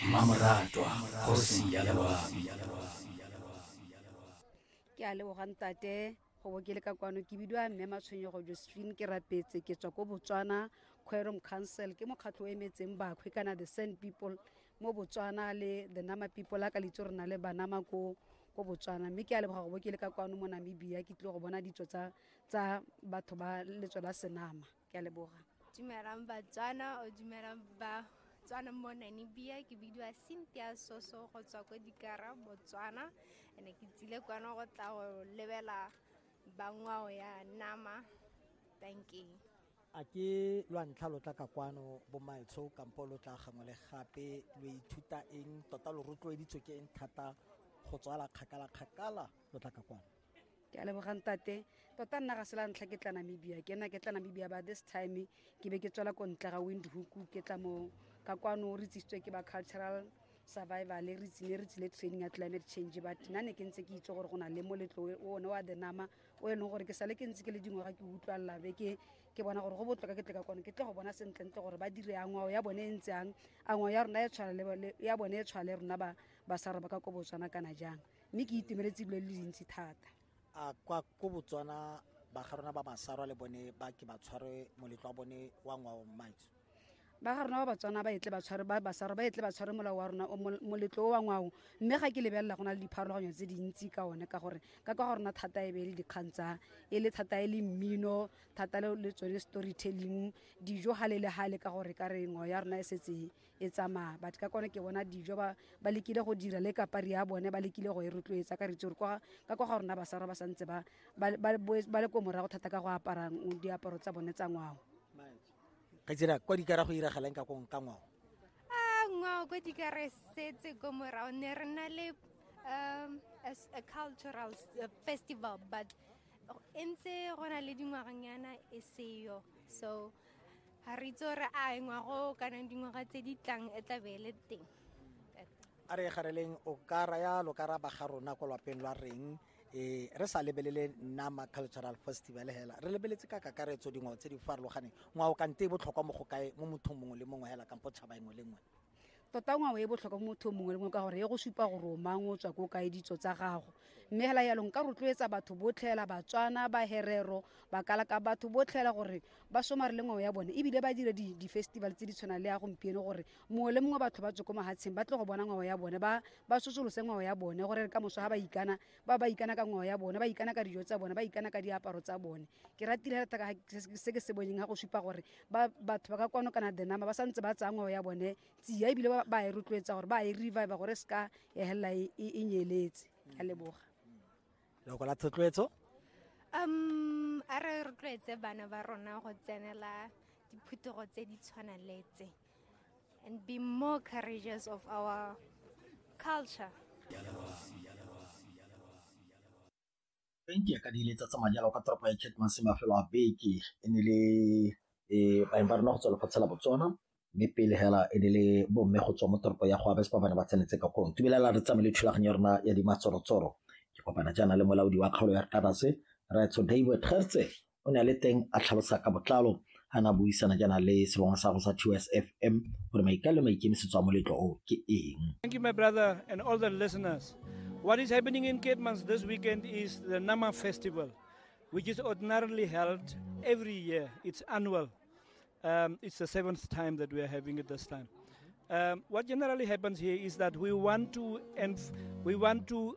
mmamoratwa kgosi ya loabi ke a leboga ntate go bo ke le ka kwano ke bidiwa mme matshwenyego josephine ke rapetse ke tswa ko botswana quorum council ke mokgatlho o emetseng bakhwe kana the sand people mo botswana le the nama people a ka litse re na le banama ko ko botswana mme ke a leboga go bo ke le ka kwano mo namibia ke tlile go bona ditso tsa tsa batho ba letswe la senama ke a leboga dumelang batswana o dumelang ba tswana mo namibia ke bidiwa cynthia soso go tswa ko dikara botswana ene ke tsile kwano go tla go lebela bangwao ya nama tanking a ke lwa ntlha lo tla ka kwano bomaetsho kampo lo tla gangwe le gape lo ithuta eng tota lo rotloeditswe ke eng thata go tswala kgakala-kgakala lo tla ka kwano ke a lebogang tate tota nna ga se la ntlha ke tla namibia ke nna ke tla namibia ba this time ke be ke tswela ko ntle ga windhoek ke tla mo ka kwano re tsisitswe ke ba cultural survival re tsene re tsile training ya climate change but nna ne ke ntse ke itse gore go na le moletlo o one wa denama o e leng gore ke sale ke ntse ke le dingwaga ke utlwalela be ke ke bona gore go botlhoka ke tle ka kone ke tle go bona sentlentle gore ba dire a ngwao ya bone e ntse yang a ngwao ya rona e tshwana ya bone e tshwana le rona ba ba sa roba ka ko botswana kana jang mme ke itumeletse dilo le dintsi thata a kwa ko botswana ba ga rona ba basarwa le bone ba ke ba tshware moletlo wa bone wa ngwao mmaitso ba ga rona ba batswana ba etle batshware ba basarwa ba etle batshware molao wa rona moletlo o wa ngwao mme ga ke lebelela go na le dipharologanyo tse dintsi ka one ka gore ka kwa ga rona thata e be e le dikgang tsa e le thata e le mmino thata le tsone storytelling dijo gale le gale ka gore ka re ngwao ya rona e setse e tsamaya but ka kone ke bona dijo ba ba lekile go dira le kapari ya bone ba lekile go e rotloetsa ka ritse gore ka kwa ga rona basara ba santse ba ba le ko morago thata ka go apara diaparo tsa bone tsa ngwao ka tsira kwa dikara go iragalang ka kong ka ngwao a ngwao kwa dikara setse ko morago ne re na le um as a cultural uh, festival but e ntse go na le dingwaganyana e seyo so ga re itse gore a ngwago kana dingwaga tse di tlang e tla be e le teng a re gareleng o ka raya lo ka ra ba ga rona kwa lwapeng lwa reng eh re sa lebelele nama cultural festival hela re lebeletse ka kakaretso dingwao tse di farologaneng ngwao kante e botlhokwa mo go kae mo mothong mongwe le mongwe hela kampo tšhaba engwe le ngwe tota ngwao e botlhokwa mo motho mongwe le mongwe ka gore e go supa gore o mang o tswa ko kae ditso tsa gago mme fela yalo nka rotloetsa batho botlhela batswana baherero bakalaka batho botlhela gore ba somare le ngwao ya bone ebile ba dire di-festival tse di tshwanang le ya gompieno gore mongwe le mongwe batho ba tswe ko mahatsheng ba tle go bona ngwao ya bone ba sosolose ngwao ya bone gore ka moso ga ba ikana ba ba ikana ka ngwao ya bone ba ikana ka dijo tsa bone ba ikana ka diaparo tsa bone ke ratile thata ka se ke se boneng ga go supa gore batho ba ka kwano kana the number ba sa ntse ba tsaya ngwao ya bone tsia ebile ba e rotloetsa gore ba e revive gore e se ka ya helela e, e, e nyeletse ka leboga loko la thotloetso um a re rotloetse bana ba rona go tsenela diphutogo tse di tshwana le tse Bank ya ka di letsa tsa madi a kwa toropo ya Kettmanse mafelo a beke e ne le baeng ba rona go tswa lefatshe la Botswana mme pele hela e ne le bomme go tswa mo toropo ya go abes ba bane ba tsenetse ka kong tumelela re tsamaye le thulaganyo ya rona ya dimatsorotsoro ke kopana jaana le molaodi wa kgaolo ya kadase raetso david gertse o ne a le teng a tlhalosa ka botlalo a na buisana jaana le sebongwa sa go sa TSFM gore maikalo maikemisetso a moletlo o ke eng Thank you my brother and all the listeners What is happening in Cape Mans this weekend is the Nama Festival which is ordinarily held every year it's annual um, it's the seventh time that we are having it this time um, what generally happens here is that we want to and we want to